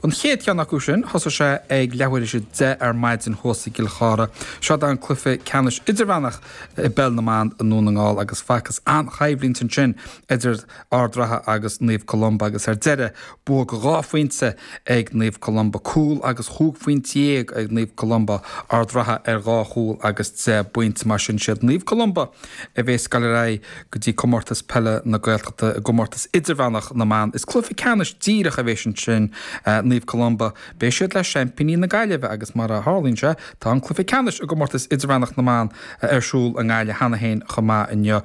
An chéad cheann acu sin, thosaigh sé ag leathuair is a deich ar maidin thuas i gCill Chartha. Seod é an cluiche ceannais idirmheánach i bpeil na mban i nDún na nGall agus facthas an-choimhlint ansin idir Ard Ratha agus Naomh Columba agus ar deireadh bua go dhá phointe ag Naomh Columba. Cúl agus chúig phointe dhéag ag Naomh Columba, Ard Ratha ar dhá chúl agus deich bpointe. Mar sin siad Naomh Columba. a bheas ag goil ar aghaidh go dtí Comórtas Peile na Gaeltachta i gcomórtas idirmheánach na mban. Is cluiche ceannais díreach a bheas ansin, Naomh Columba, beidh siad le seaimpíní na Gaillimhe agus mar a tharlaíonn sé, tá an cluiche ceannais i gcomórtas idirmheánach na mban ar siúl i nGaillimh cheana féin chomh maith inniu.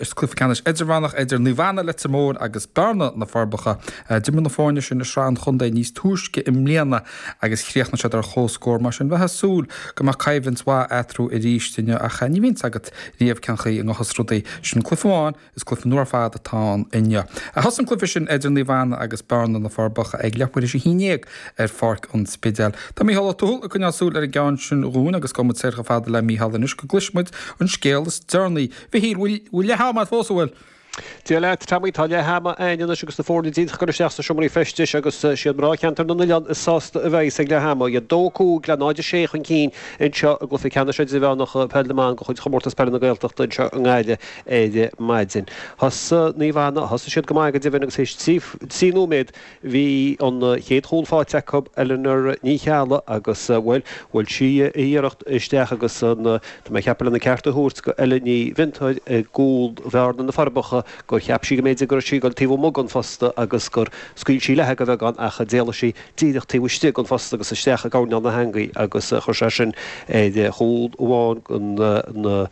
Is cluiche ceannais idirmheánach idir Naomh Anna, Leitir Móir agus Bearna, Na Forbacha, d'imir na foirne sin i Sraith an Chontae níos túisce i mbliana. agus chríochnaigh siad ar comhscór. Mar sin, bheifeá ag súil go mbeadh coimhlint mhaith eatarthu arís inniu ach ní bhíonn 's agat riamh cén chaoi a ngabhfas rudaí. Sin cluiche amháin, is cluiche nua ar fad atá ann inniu. A thosaigh an cluiche sin idir Naomh Anna agus Bearna, Na Forbacha ag leath uair is a haon dhéag ar Pháirc an Spidéil. Tá Micheál Ó Tuathail ag coinneáil súil ar an gceann sin dhúinn agus gabhfaidh muid soir chomh fada le Micheál anois go gcloisfidh muid an scéal is deireanaí. Mhichíl, bhfuil leath ama agat fós, an bhfuil? Dia leat, Tommy. Tá leath ama a'ainn anois agus na foirne díreach ag goil isteach sna seomraí feistis agus is iad mná Cheantar na nOileán is sásta a bheidh's ag leath ama. Iad 2, 5 le 0, 6 chun cinn anseo i gCluiche Ceannais Idirmheánach Peil na mBan de chuid Chomórtas Peile na Gaeltachta anseo i nGaillimh ar maidin. Thosaigh Naomh Anna, thosaigh siad go maith go deimhin agus théis trí nóiméad, Bhí an chéad chúl faighte acu, Eleanor Ní Cheallaigh, agus, bhuel, bhuail sí a hiarracht isteach agus an, tá mé ag ceapadh lena ceart a thabhairt go Ella Ní Mhiontáir i gcúl Bhearna, Na Forbacha, gur cheap sí go mb'fhéidir go raibh sí ag dul taobh amuigh den phost agus gur scaoil sí léithi go bheagán ach d'éalaigh sí díreach taobh istigh den phost agus isteach i gcoirnéal na heangaí agus chuir sé sin ar chúl amháin den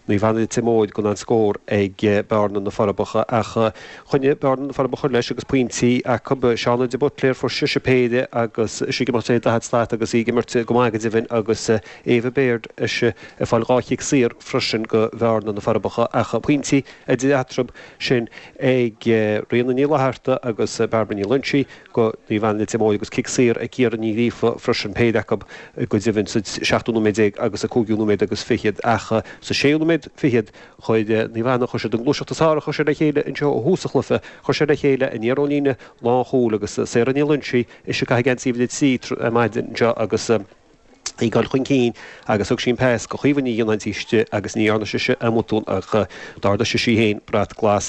Naomh Anna Leitir Móir gan aon scór ag Bearna, Na Forbacha ach choinnigh Bearna, Na Forbacha leis agus pointí acu. Shauna de Buitléir fuair sise péire agus sí ag imeacht 40 slat agus í ag imirt go maith go deimhin agus Éabha Baird is í ag fáil dhá chic saor freisin go Bearna, Na Forbacha ach pointí idir eatarthu sin ag Ríona Ní Fhlaithearta agus Bairbre Ní Loingsigh. go Naomh Anna Leitir Móir agus cic saor ag Ciara Ní Ghríofa freisin, péire acu go deimhin sa seachtú nóiméad déag agus sa cúigiú nóiméad agus fichead ach sa séú nóiméad fichead chuir Naomh Anna, chuir siad an gluaiseacht is fearr a chuir siad le chéile anseo ó thús an chluiche chuir siad le chéile aniar ón líne lánchúil agus Sarah Ní Loingsigh is í ag caitheamh geansaí uimhir a trí ar maidin anseo agus í dul chun cinn agus thug sí an pas go Caoimhe Ní Fhionnáin taobh istigh agus ní dhearna sise aon bhotún ach d'ardaigh sise í féin brat glas